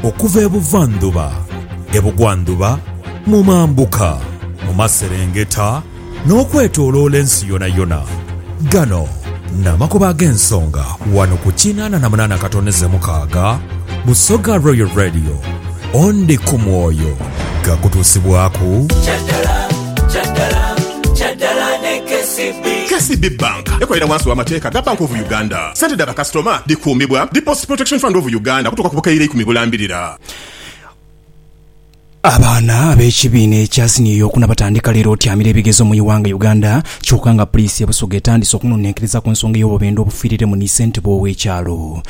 Okuva e buvandhuba, e bugwandhuba, mu mambuka, mu maserengeta, n'okwetooloola ensi yonayona. Gano n'amakubo ag'ensonga wano ku kinaana na munaana katoneze mukaaga Busoga Royal Radio. Ondi ku mwoyo gakutuusibwaku. KCB Bank ekolera wansi w'amateeka ga Bank of Uganda. Sente dha bakasitoma dhikuumibwa Deposit Protection Fund of Uganda okutuuka ku bukaire ikumi bulambirira. Abaana ab'ekibiina ekya siniya eyokuna batandika leero otyamira ebigezo mu ighanga Uganda kyoka nga puliisi e Busoga etandise okunonenkereza ku nsonga ey'obubendwa obufiiriremu ni ssentebe ow'ekyalo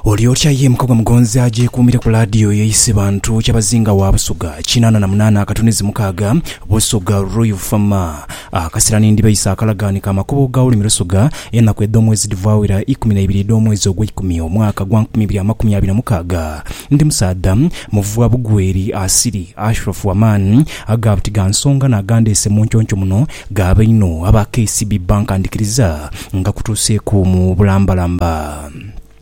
Olyotya ye Mukagwa Mugonzi agyekuumire ku laadiyo ye Isibantu Kyabazinga wa Busoga kinaana na munaana akatunizi mukaaga Busoga Royal Fama Akasera ni ndiba isa akalagaane ka makubo ga Ulimi Lusuga, enaku edh'omwezi dhivaawira ikumi na ibiri edh'omwezi ogweikumi, omwaka gwa nkumi ibiri amakumi abiri na mukaaga. Ndi musaadha muvuwa bugweri, asiri, ashrofu amaani, aga buti ga nsonga n'agandeese mu nconco muno, gaaba inho aba KCB bankandikiriza nga kutuuseeku mu bulambalamba.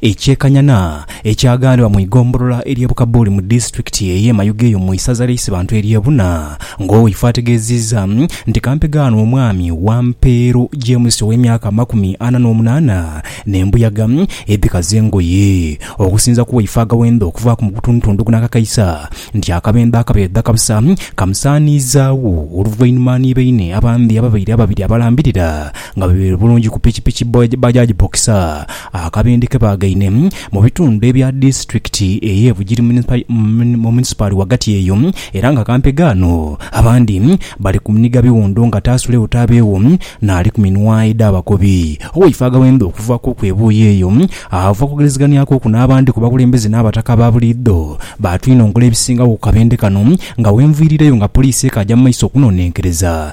Ekyekanhana ekyaghanibwa mu igombolola ery'e Bukabuli mu disitulikiti ey'e Mayuge eyo mu isaza lya Isibantu ery'e Buna nga owaife ategeziiza nti kampega ghano omwami Wampeero James ow'emyaka amakumi ana n'omunaana n'embuyaga edhikaza engoye okusinza ku waife agawenda okuvaaku mu butundutundu kuno akakaisa nti akabenda akabeedha kabusa kamusaaniizaagho oluvainhuma ni baine abandi ababaire ababiri abalambirira Nga biri bulungi ku pikipiki Bajaj Boxer, akabindi ke baagaine mu bitundu ebya disitulikiti ey'e Bugiri mu munisipaali ghagati eyo era nga kampe ghano abandi bali kunhiga biwundo nga taasulewo taabeewo n'ali ku minwaye dh'abakobi. Owaife aghawemba okuva kw'oku ebuuyi eyo ava kwogerezeganhia kw'oku n'abandi ku bakulembeze n'abataka aba buliidho baatwinongola ebisingagho ku kabindi kano nga wenviirireyo nga poliisi ekaaja mu maiso okunonenkereza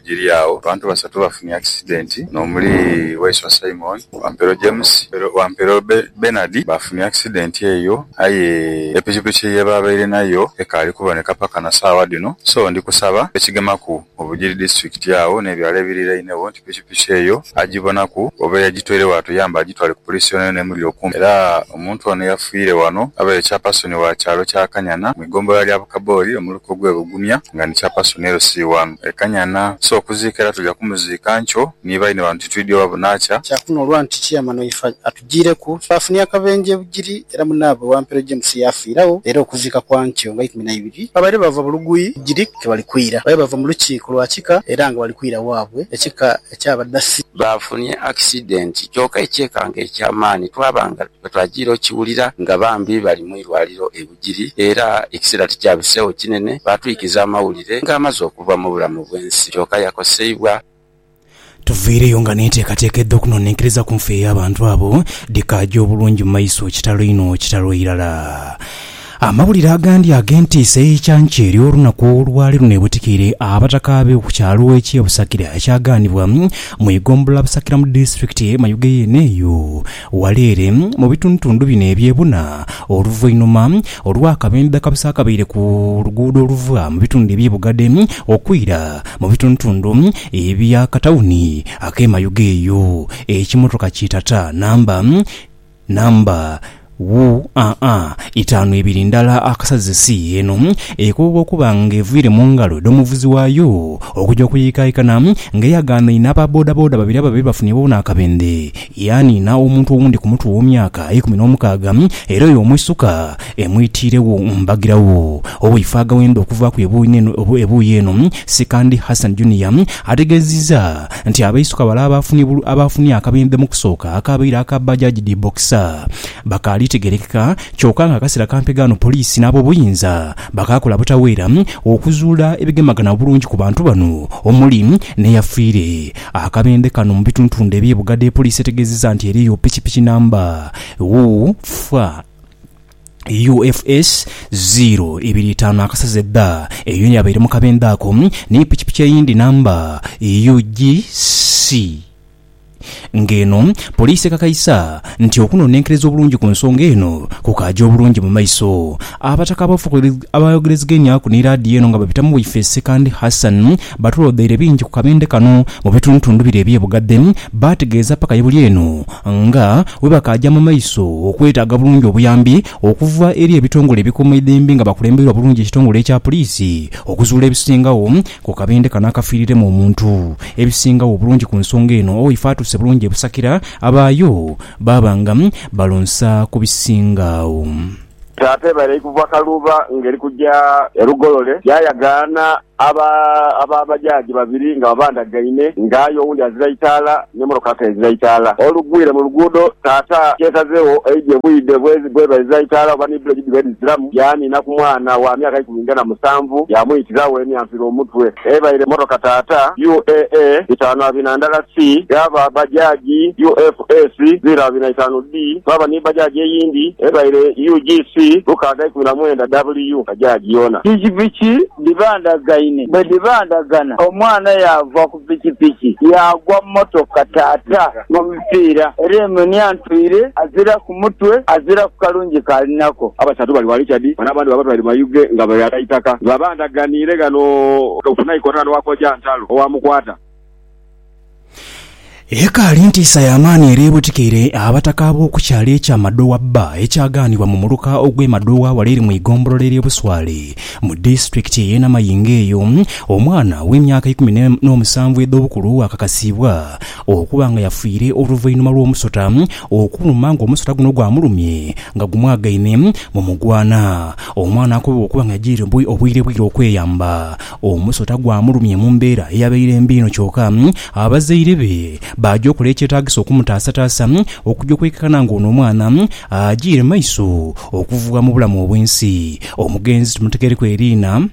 Giri agho, abantu basatu bafunye akisidenti n'omuli Waiswa Simon, Wampero James ni Wampero Bernard baafunye akisidenti eyo aye epikipiki ye baabaire nayo ekaali kuboneka paka na saagha dhino so ndi kusaba abekigemaku mu Bugiri disiturikiti agho n'ebyalo ebirirainegho nti pikipiki eyo agibonaku oba eyagitwaire waatuyamba agitwale ku puliisi yonayona emuli okumpi era omuntu ono eyafiire wano abaire Chairperson wa kyalo kya Kanyana mu Eggombolola lya Bukaboli omuluka ogw'e Bugumya nga ni Chairperson LC wano e Kanyana. So okuziika era tuja kumuziika nkyo ni baine bano titwidhi oba bunaakya. Kya kunoolwa nti Chairman waife atujiireku twaafunha akabenje e Bugiri era munaabwe Wampero James yaafiiragho era okuziika kwa nkyo nga ikumi na ibiri babaire bava Bulugui Bugiri ke bali kwira. Babaire bava mu lukiiko lwa kika era nga bali kwira waabwe ekika eky'Abadasi. Baafunye accident kyoka ekyekango eky'amaani twaba nga bwe twajiire okukiwulira nga bambi bali mu irwaliro e. giri, era ekiseera tikyabiseegho kinene baatwikiza amawulire ng'amaze okuva mu bulamu bw'ensi. Kyoka yakoseibwa. Tuviireyo nga n'enteekateeka edh'okunonenkeriza ku nfa ey'abantu abo dhikaaja obulungi mu maiso. Kitalo inho! Kitalo irala! Amawulire agandi ag'entiisa ey'ekyankya eri olunaku olwali lunebutikeire abataka abe ku kyalo eky'e Busakira ekyagaanibwa mu igombola Busakira mu disitulikiti ye Mayuge yeene eyo. Ghale ere mu bitundutundu bino eby'e buna oluvainhuma, olwo akabembe akabisa akabaire ku luguudo oluva mu bitundu eby'e Bugade okwira mu bitundutundu eby'akatawuni ak'e Mayuge eyo, ekimotoka ki Tata namba namba UAA itaanu ebiri ndala akasaze si eno ekobwa okuba nga eviire mu ngalo edh'omuvuzi waayo okuja okuyiikaikana nga eyagaanaine aba bodaboda babiri ababaire bafunye boona akabembe. Yaaniina omuntu owundi ku mutwe ow'omyaka eikumi n'omukaaga, era oyo omwisuka emwitiiregho mbagiragho. Owaife agaghenda okuvaaku ebuuyi eno, Sikandi Hassan Junior, ategeezizza nti abaisuka bale abaafunye akabenje mu kusooka akaabaire aka Bajaj dhi Boxer bakaali tegerekeka kyoka nga akaseera kampi ghano poliisi n'abobuyinza bakaakola butaweera okuzuula ebigemagana obulungi ku bantu bano omuli n'eyafiire Akabendhe kano mu bituntundu ebye Bugadha epoliisi etegezeza nti eriyo pikipiki namba UFA UFS ziro ibiri itaanu akasaze dha eyo yabaire mu kabendhe ako ni pikipiki eyindi namba UGC nga eno poliisi ekakaisa nti okunonenkereza obulungi ku nsonga eno kukaagya obulungi mu maiso. Abataka abafukirivu abaayogerezegaineaku ni laadiyo eno nga babitamu waife Sekandi Hassan batulodheire bingi ku kabende kano mu bitundutundu bire eby'e Bugadhe. Baategeeza paka ye buli eno nga bwe bakaaja mu maiso okwetaaga bulungi obuyambi okuva eri ebitongole ebikuuma eidhembe nga bakulembeirwa bulungi ekitongole ekya puliisi okuzuula ebisingagho ku kabende kano akafiiriremu omuntu. Ebisingagho obulungi ku nsonga eno waife atuuse bulungi e Busakira abaayo baaba nga balonsa ku bisingagho. Taata eba eri kuva Kaluuba nga eri kuja e Lugolole, yaayagaana aba aba bajaaji babiri nga babandhagaine nga aye owundi azira itaala n'emotoka ate ezira itaala. Olugwire mu luguudo, taata yeesazegho eidhe bwidhe bw'eba ezira itaala oba ni bbuleki dhiba edhiziramu, yaaniina ku mwana wa myaka ikumi nga na musanvu yaamwiitiragho emyanfira omutwe. Ebaire mmotoka taata UAA bitaanu abina ndala si dha ba bajaaji UF. S ziro abiri na itaanu D Twaba ni bajaji eyindi ebaire UGC lukaaga ikumi na mwenda WU bajaji yoona. Pikipiki dhibandhagaine. Bwe dhibandhagana, omwana yaava ku pikipiki yaagwa mu mmotoka taata mu mipiira era emunia ntwire aziraku mutwe aziraku kalungi k'ali nako. Abasatu bali wa Richard ghano abandi baaba twaire Mayuge nga bali agha itaka. Baabandhaganiire ghano ku naikoto ghano wa Kojantalo owa Mukwata. Ekaali ntiisa ya maani era ebotikeire abataka ab'okukyalo ekya Madowa Bba ekyagaanibwa mu muluka ogw'e Madowa wala eri mu igombolola ery'e Buswale mu disitulikiti ey'e Namayingo eyo omwana ow'emyaka eikumi n'omusanvu edh'obukulu akakasiibwa okuba nga yafiire oluvainhuma lw'omusota okuluma ng'omusota guno gwamulumye nga gumwagaine mu mugwana. Omwana akobebwa okuba nga yajiire obwiirebwire okweyamba Omusota gwamulumye mu mbeera eyabaire mbi inho kyoka abazaire be baaja okola ekyetaagisa okumutaasataasa okuja okwekakana nga ono omwana ajiire maiso okuvugha mu bulamu obw'ensi. Omugenzi timuteghereku eriina.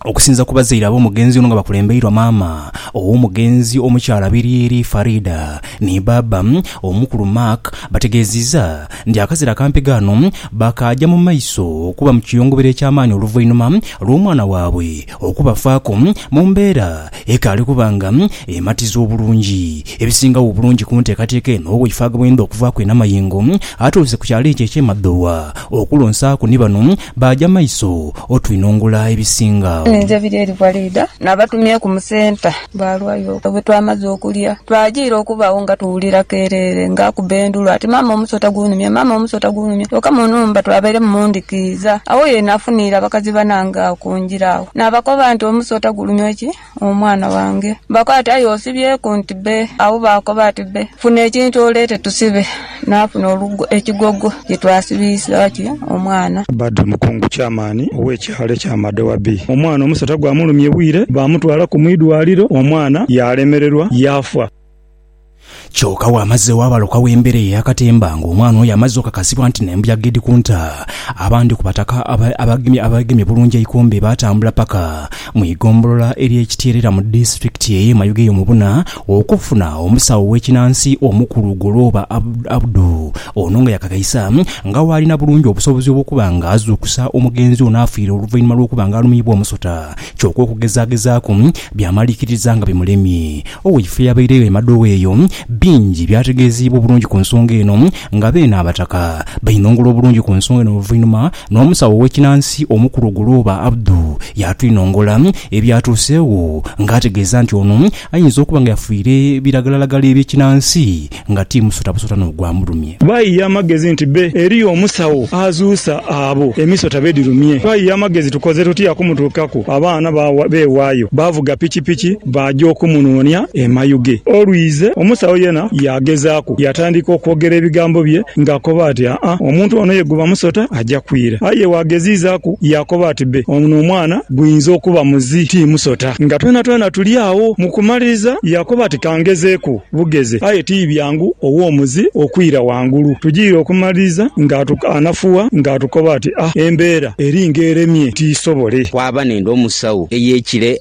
Okusinza ku bazaire ab'omugenzi ono nga bakulembeirwa maama ow'omugenzi omukyala Biryeri Faridah ni baaba omukulu Mark bategeeziiza nti akazira akampi ghano baakaaja mu maiso okuba mu kiyongobero eky'amaani oluvainhuma lw'omwana waabwe okubafaaku mu mbeera ekaali kuba nga ematiza obulungi. Ebisingagho obulungi ku nteekateeka eno waife agabweindha okuvaaku e Namayengo atuuse ku kyalo ekyo eky'e Madhowa okulonsaaku ni bano baaja maiso otwinhongula ebisinga. Ninze biri eri Walida. Nabatumyeku mu centre Bwalwayo bwe twamaze okulya, twajiira okubagho nga tuwulira kereere nga akuba endulu ati Maama omusota gunumye, maama omusota gunumye. Kyoka mu nhumba twabairemu mu ndhikiiza. Agho ye nafuniira abakazi banange agho ku ngira agho. Nabakoba nti Omusota gulumye ki omwana wange? Bakoba ati Aye osibyeku nti be. Agho baakoba ati be. Funa ekintu oleete tusibe. Naafuna ekigogo kye twasibiisaaku omwana. Badru Mukungu Chairman ow'ekyalo ekya Amadowa B, omwana omusota gwamulumye bwire baamutwalaku mu idwaliro omwana yaalemererwa yaafa. Kyoka wamazegho abalokawo embera eyo eyakatemba nga omwana oyo amaze okakasibwa nti nembuyaga edhikunta abandhi kubataka abegemye bulungi eikombe baatambula paka Mu igombolola ery'e Kityeerera mu disitulikiti ey'e Mayuge y'omubuna okufuna omusawo w'ekinansi omukulu Golooba Abdu. Ono nga yakakaisa nga waalina bulungi obusobozi obw'okuba nga azuukusa omugenzi ono afiire oluvainhuma lw'okuba nga alumiibwa omusota kyoka okugezagezaaku byamaliikiriza nga bimulemye. Owaife eyabairegho e Madowa eyo bingi byategeezeibwa obulungi ku nsonga eno nga beene abataka bainhongola obulungi ku nsonga eno oluvainhuma N'omusawo ow'ekinansi omukulu Ogolooba Abdu yaatwinongola ebyatuuseegho ng'ategeeza nti ono ayinza okuba nga yafiire biragalalagala eby'ekinansi nga ti musota busota n'ogwamulumye. Baighe amagezi nti be eriyo omusawo azuusa abo emisota be dhirumye. Twaighe amagezi tukoze tutya okumutuukaku abaana beewaayo baavuga pikipiki. Baaja okumunoonia e Mayuge. Olwize, omusawo yena yaagezaaku yaatandika okwogera ebigambo bye ng'akoba ati, Aa-a, omuntu ono ye guba musota, aja kwira. Aye waageziizaaku yaakoba ati, Bbe, ono omwana gwinza okuba muzi, ti musota. Nga twenatwena tuli agho. Mu kumaliriza, yaakoba ati, Ka ngezeeku bugeze. Aye ti byangu ow'omuzi okwira ghangulu. Tugire okumaliriza ng'atukanafuwa ng'atukoba ati, Aa, embeera eri ng'eremye tiisobole. Kwaba n'endhomusawo ey'ekire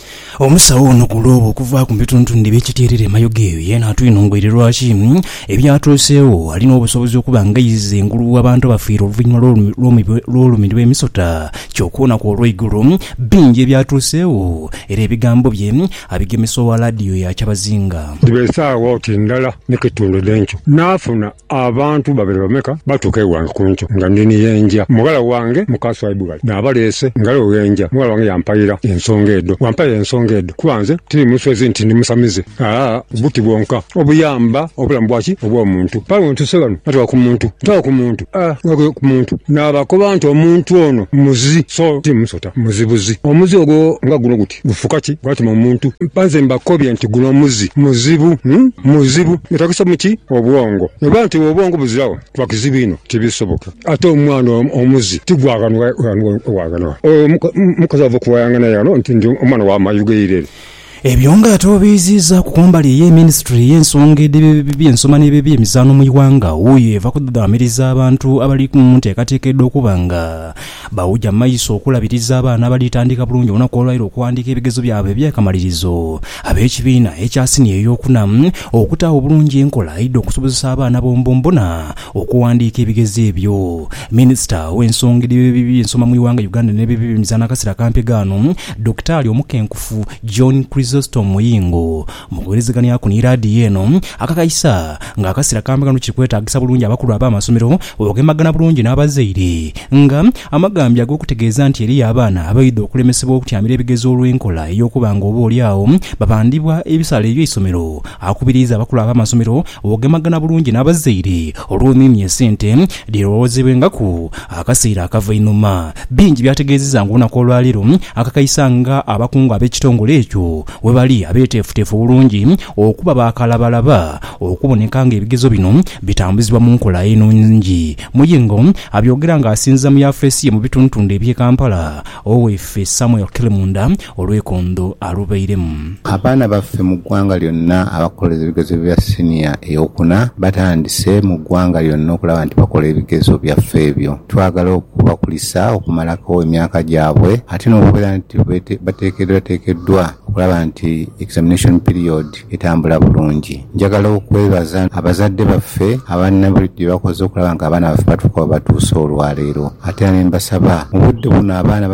Omusawo ono ku lw'obo okuvaaku mu bitundutundu eby'ekitierera e Mayoga eyo yeena atwine ngoire lwaki ebyatuuseegho alina obusobozi okuba ng'aizza engulu w'abantu abafiire oluvannyuma lw'olumirwa emisota kyoka olunaku olw'eigulo bingi ebyatuuseegho era ebigambo bye abigemesa owa laadiyo ya Kyabazinga. Dhiba esaawa oti ndala ni kitundu dhenkyo, naafuna Abantu babere bameka batuuka ewange ku nkyo nga ndi ni ye nja. Mughala wange muka Swaibughali naabaleese. Ngalo gheenja, mughala wange yampaira ensonga edho. Wampaira ensonga edho kuba nze tiri muswezi nti ndi musamize. Aa, buti bwonka obuyamba obulamu bwa ki? Obw'omuntu. Kale wentuuse ghano natuuka ku muntu. Ntuuka ku muntu. Aa, natuuka ku muntu naabakoba nti omuntu ono muzi so ti musota. Muzi buzi. Omuzi ogwo nga guno guti. Gufuuka ki gwatuma omuntu? Mpa nze mbakobye nti guno omuzi muzibu, muzibu. Gwetaagisa mu ki? Obwongo. Bwe biba nti obwongo buziragho, kiba kizibu inho, tibisoboka. Ate omwana omuzi ti gwa ghano ghano. Oyo mukazi ava okuwayaangana ye ghano nti ndi omwana wa mayu ghe Irere. Ebyo nga ate obiiziizaaku ku mbali eye minisitule y'ensonga edh'ebyensoma n'ebyemizaanho mu ighanga, wuuyo eva kudhudhaamiriza abantu abali mu nteekateeka edh'okuba nga Bawuja maiso okulabiriza abaana abalitandika bulungi olunaku olwaire okuwandiika ebigezo byabwe eby'akamalirizo ab'ekibiina ekya siniya ey'okuna, okutaagho bulungi enkola edh'okusobozesa abaana bonbonbona okuwandiika ebigezo ebyo. Minisita ow'ensonga edh'eby'ensoma mu ighanga Uganda n'eby'eby'emizaano akasera akampi ghano, Dokitaali omukenkufu John Chrysostom Muyingo, Mu kuwuliriziganyaku ni laadiyo eno, akakaisa nga akasira kambi ghano kiri kwetaagisa bulungi abakulu ab'amasomero oghemagana bulungi n'abazaire nga amagambya ag'okutegeeza nti eriyo abaana abaidha okulemesebwa okutyamira ebigezo olw'enkola ey'okuba nga oba oli agho babandhibwa ebisale by'eisomero. Akubiriiza abakulu ab'amasomero oghemagana bulungi n'abazaire olw'omiimia esente dhe lowoozebwengaku akaseera akava einhuma. Bingi by'ategeezezza ng'olunaku olwaleero akakaisa nga abakungu ab'ekitongole ekyo Webali abeteefuteefu obulungi okuba ba kalabalaba okuboneka nga ebigezo bino bitambuzibwa mu nkola enungi. Muyingo abyogera nga asinziza mu yafeesi ye mu bitundutundu ebye Kampala, Oweife Samuel Kilimunda olwekondo alubairemu. Abaana baffe mu ggwanga lyonna abakolereza ebigezo bya siniya ey'okuna batandise mu ggwanga lyonna okulaba nti bakola ebigezo byaffe ebyo. Twagala okubakulisa okumalako emyaka gyabwe ate n'okubeera nti bateekeddwateekeddwa okulaba nti examination period etambula bulungi. Njagala okwebaza abazadde baffe abalina buli kye bakoze okulaba nga abaana baffe batuuka we batuuse olwaleero ate era ne mbasaba mu budde buno abaana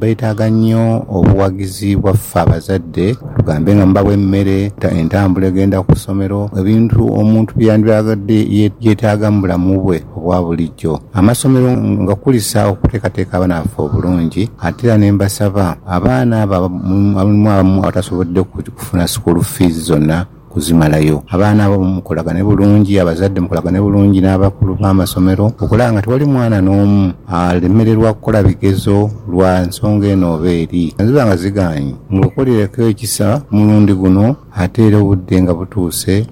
beetaaga nnyo obuwagizi bwaffe abazadde tugambe nga mubawa emmere, entambula egenda ku ssomero, ebintu omuntu bye yandyagadde yeetaaga mu bulamu bwe. obwa bulijo. Amasomero ngakulisa okuteekateeka abaana baffe obulungi ate era ne mbasaba abaana abo mulimu abamu abatasobodde kufuna sikuulu fiizi zonna kuzimalayo, abaana abo mukolagane bulungi, abazadde mukolagane bulungi n'abakulu b'amasomero okulaba nga tewali mwana n'omu alemererwa kukola bigezo lwa nsonga eno oba eri. Bwe ziba nga zigaanyi, mubakolereko ekisa ku mulundi guno ate era obudde nga butuuse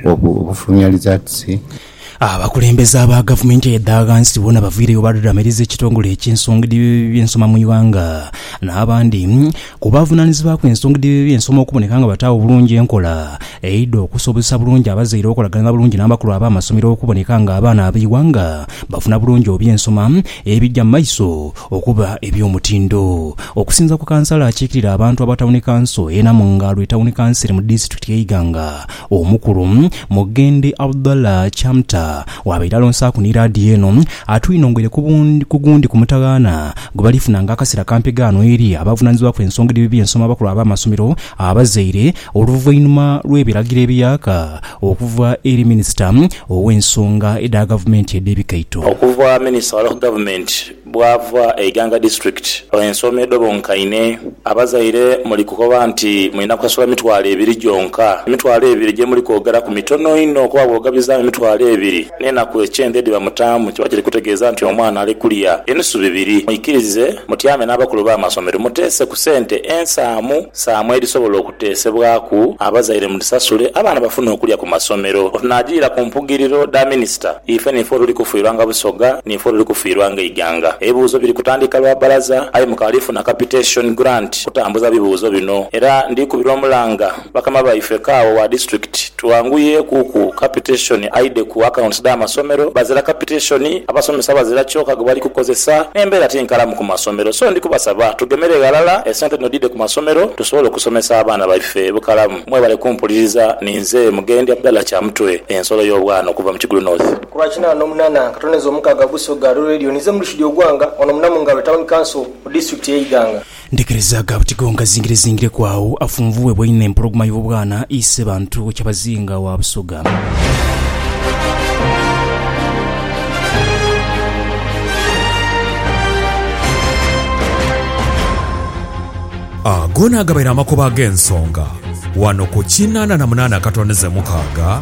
obufulumya lizaatisi Abakulembeze aba gavumenti edha ghansi boona bavaireyo baadhadhaamiriza ekitongole eky'ensonga edh'ebyensoma mu ighanga n'abandi ku bavunanizibwaku ensonga edh'ebyensoma okuboneka nga bataagho bulungi enkola eidha okusobozesa bulungi abazaire okolaganira bulungi n'abakulu ab'amasomero okuboneka nga abaana ab'eighanga bafuna bulungi obyensoma ebija mu maiso okuba eby'omutindo. Okusinza ku kansala akiikirira abantu aba tawuni kanso e Namungaalo etawuni kanseri mu disitulikiti y'e Iganga, Omukulu, Mughende Abdallah Chamta waabaire alonsaaku ni laadiyo eno, atwinongere ku gundi ku mutaghaana gwe balifunanga akaseera kampi ghano eri abavunaanyizibwaku ensonga edh'ebibi ensoma abakulu ab'amasomero, abazaire, oluvainhuma lw'ebiragiro ebiyaaka okuva eri Minisita ow'ensonga edha Gavumenti edh'ebikaito. Okuva Minisita wa Local Government Bwava e Iganga District. Ensoma edho bonkaine. Abazaire muli kukoba nti mulina kusasula mitwalo ebiri gyonka. Emitwalo ebiri gye muli kwogeraku mitono inho kuba bw'ogabizaamu emitwalo ebiri n'enaku ekyenda edhiba mutaamu kiba kiri kutegeeza nti omwana ali kulya enusu bibiri. Mwikirize mutyame n'abakulu b'amasomero muteese ku sente ensaamu saamu edhisobola Teesebwaku, Abazaire mudhisasule abaana bafune okulya ku masomero. Wetunajiira ku mpugiriro dha minisita, ife niifo tuli kufiirwanga Busoga, niifo tuli kufiirwanga eighanga. Ebibuuzo biri kutandika lwa balaza aye mukaali funa capitation grant kutambuza bibuuzo bino era ndikubira omulanga bakama baife kaawa wa disitulikiti, Twanguyeku ku capitation aidhe ku accounts dha masomero. Bazira capitation, abasomesa bazira kyoka gwebali kukozesa, n'embeera ti nkalamu ku masomero. So ndi kubasaba tugemere ghalala esente dhino dhidhe ku masomero tusobole okusomesa abaana baife bukalamu. Mwebale kumpuliriza. Ninze Mugendi Abdallah Kyamutwe, Ensolo y'Obwana okuva mu Kigulu North. Ku lwa kinaana no munana akatoneza omukaaga Busoga Rural Radio ninze Murshid Ogwanga wano mu Namungalwe Town Council mu Disitulikiti y'e Iganga. Ndekerezaagho abatigo nkazingirezingireku agho afunvuughebwa einho empologoma y'obwana ise bantu we kyabazinga owa Busoga. Ago naagabaire amakubo ag'ensonga wano ku kinaana na munaana akatondeze mukaaga.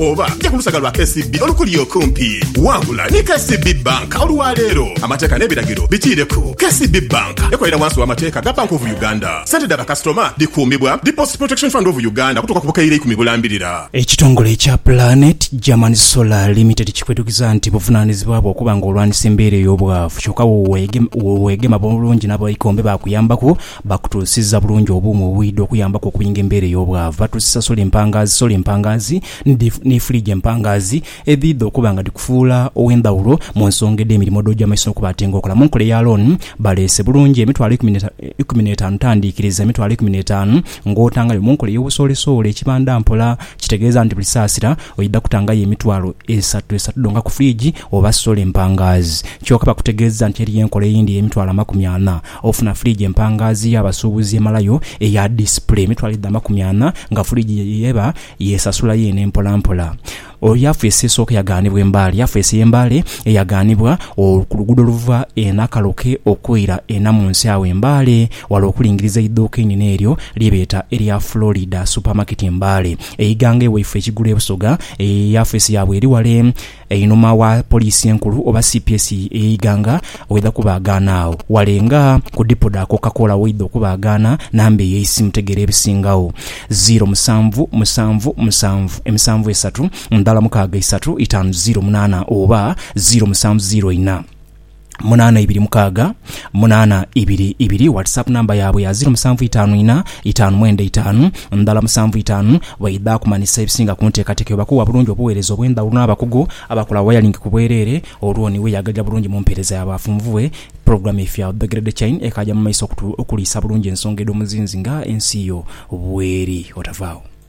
Oba ja ku lusaga lwa KCB olukuli okumpi. Wangula ni KCB Bank olwa leero. Amateeka n'ebiragiro bikiireku. KCB Bank ekolera wansi w'amateeka ga Bank of Uganda. Sente dha bakasitoma dhikuumibwa Deposit Protection Fund of Uganda okutuuka ku bukaire ikumi bulambirira. Ekitongole ekya Planet German Solar Limited kikwetukiza nti buvunaanizibwa bwo okuba nga olwanisa embeera ey'obwavu. Kyoka weegema bulungi n'abaikombe baakuyambaku. Bakutuusiza bulungi obuuma obwidha okuyambaku okuyinga embeera ey'obwavu. Batuusiza sola empangaazi, sola empangaazi, ni, ni fridge empangaazi, edhiidha okuba nga dhikufuula ow'endhawulo mu nsonga edh'emirimo dh'oja mu maiso n'okuba ati nga okola. Mu nkola eya loan, baleese bulungi emitwalo eikumi ne, eikumi n'etaanu tandiikiriza, emitwalo eikumi n'etaanu ng'otangayo. Mu nkola ey'obusoolesoole, ekibanda mpola, kitegeeza nti buli saasira oidha kutangayo emitwalo esatu, esatu dhonka ku fridge oba sola empangaazi. Kyoka bakutegeeza nti eriyo enkola eyindi ey'emitwalo amakumi ana, Ofuna fuligi empangaazi y'abasuubuzi emalayo eya disipule emitwalo edha amakumi ana nga fuligi eba yeesasula yeene mpolampola. Oyo yafeesi esooka eyagaanibwa e Mbale. Yafeesi y'e Mbale eyagaanibwa ku luguudo oluva e Nakaloke okwira e Namunsi agho e Mbale wala okulingiriza eiduuka einene eryo lye beeta erya Florida Supermarket Mbale. Eighanga e Waifo ekigulu e Busoga, yafeesi yaabwe eri wale Einhuma wa Poliisi Enkulu oba cps eye Iganga waidha kubaagaana agho wale nga ku dipo dha Coca Cola waidha okubaagaana namba eyo eisimu tegeera ebisingagho ziiro musanvu musanvu musanvu emisanvu esatu ndhala mukaaga isatu itaanu ziiro munaana oba ziiro musanvu ziiro ina. munana ibiri mukaaga munana ibiri ibiri whatsapp namba yaabwe ya ziro musanvu itaanu ina itaanu mwenda itaanu ndala musanvu itaanu bweidha kumanisa ebisinga ku nteekateeka eyo bakuwa bulungi obuweereza obw'endhawulo n'abakugu abakola wayalingi ku bwereere olwo ni weyagaja bulungi mu mpeereza yaabwe afunvubwe Pulogulaamu eifo ya The Great Chain ekaaja mu maiso okuliisa bulungi ensonga edh'omuzinzi nga ensi yo bweri. Otavaawo.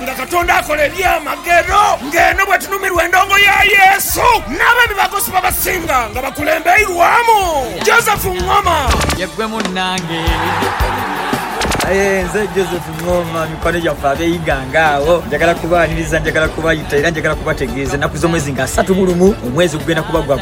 Nga Katonda akola ebyamagero nga eno bwetunumirwa endongo ya Yesu n'abo ebibakosi babasinga nga bakulembeirwamu Joseph Ngoma. Ye ggwe munnange. Aye nze Joseph Ngoma, mikwano gyaffe ab'eighanga agho, njagala kubaaniriza, njagala kubayita era njagala kubategeeza ennaku z'omwezi nga asatu mu lumu, omwezi gugenda kuba gwa.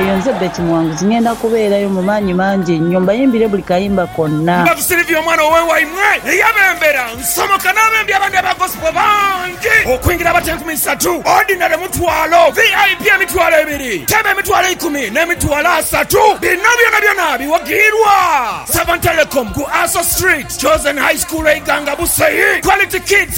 Eyo nze Betty Muwanguzi. Ngenda kubeerayo mu maanyi mangi einho mbayimbire buli kayimba konna. Mbavu Sylvia omwana owe waimwe eyabembera nsomoka n'abembi abandi aba Gospel bangi okwingira abato enkumi isatu, Ordinary mutwalo, VIP emitwalo ebiri, Teebe emitwalo eikumi n'emitwalo asatu. Bino byonabyona biwagiirwa Savantelecom ku Aso Street, Chosen High School e Iganga Busaii, Quality Kids.